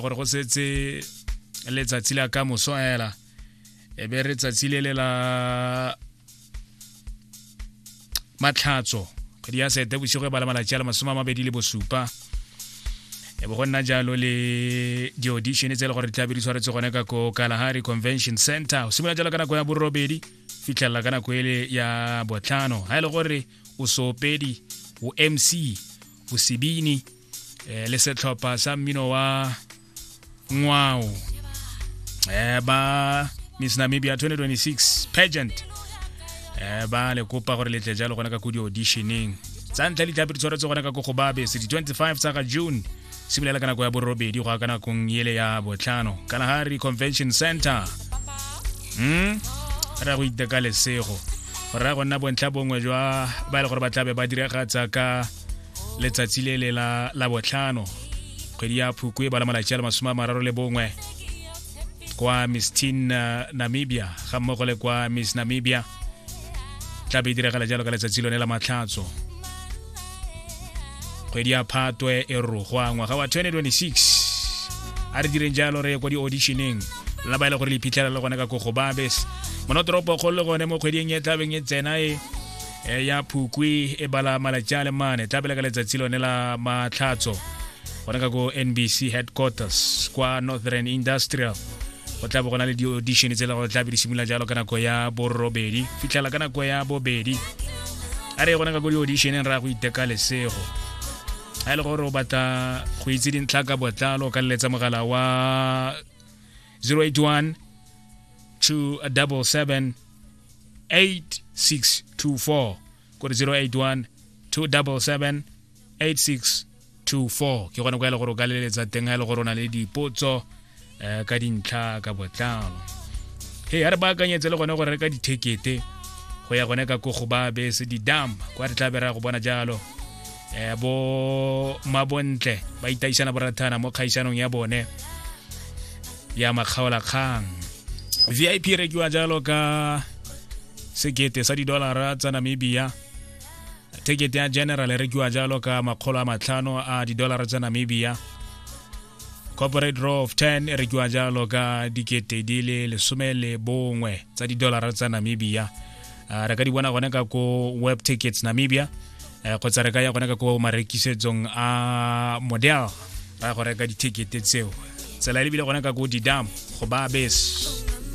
gore go setse letsatsi la ka moso hela e be re tsatsi le le la matlhatso kgwedi ya sete bosigo e ba le malatsi a le masome a mabedi le bosupa e bo go nna jalo le di-audition tse e le gore di tla be di tshwaretse gone ka ko kalahari convention center o simolola jalo ka nako ya borobedi fitlhelela ka nako ele ya botlhano ga e le gore o sopedi o mc o sebini eh, le setlhopha sa mmino wa ngwao eh, ba miss namibia 2026 pageant eh, ba le kopa gore letle jalo gona ka ko di-auditioneng tsa ntlha ditlhapi di tshwaretse gona ka ko go babe sedi 25 tsa ga june simolola ka nako ya borobedi go ya ka nakong ele ya botlhano kalahari convention center mm? re ya go iteka lesego go raya go nna bontlha bongwe jwa ba e le gore ba tlabe ba diragatsa ka letsatsi le le la la botlhano kgwedi ya phukwe ba la malatsi a le masome a mararo le bongwe kwa miss tin uh, namibia ga mmogo le kwa miss namibia tla be e diragala jalo ka letsatsi lone la matlhatso kgwedi ya phatwe e rogwa ngwaga wa 2026 a re direng jalo re ye kwa di-auditioneng la ba e le gore le iphitlhela le gone ka kogo babes monotoropo kgolo le gone mo kgweding e tlabeng e tsena e eh, ya phukwi e bala malatsi a le mane tla pele ka letsatsi lone la matlhatso gone ka ko nbc headquarters kwa northern industrial go tla bo gona le di-audition tse le gore tla be di simolola jalo ka nako ya borobedi fitlhela ka nako ya bobedi a re gone ka ko di-auditioneng ra go iteka lesego a e le gore o batla go itse dintlha ka botlalo ka leletsa mogala wa 081 277 8624 kore 081 277 8624 ke gone go ele gore o ka leletsa teng ga ele gore o na le dipotso um ka dintlha ka botlalo he ya re baakanyetse le gone go reka dithekete go ya gone ka kogo ba bese didam kwa re tla bera go bona jalo eh bo mabontle ba itaisana borathana mo kgaisanong ya bone ya makgaola kgang vip e rekiwa jalo ka sekete sa didolara tsa namibia tekete ya general e rekiwa jalo ka makgolo a matlhano a didolara tsa namibia corporate row of 10 e rekiwa jalo ka dikete di le lesome le bongwe tsa didolara tsa namibia re ka di bona gone ka ko web tickets namibia eh, kgotsa re ka ya gona ka ko marekisetsong a model ra go reka dithekete tseo tsela e lebile gona ka ko didam go ba bese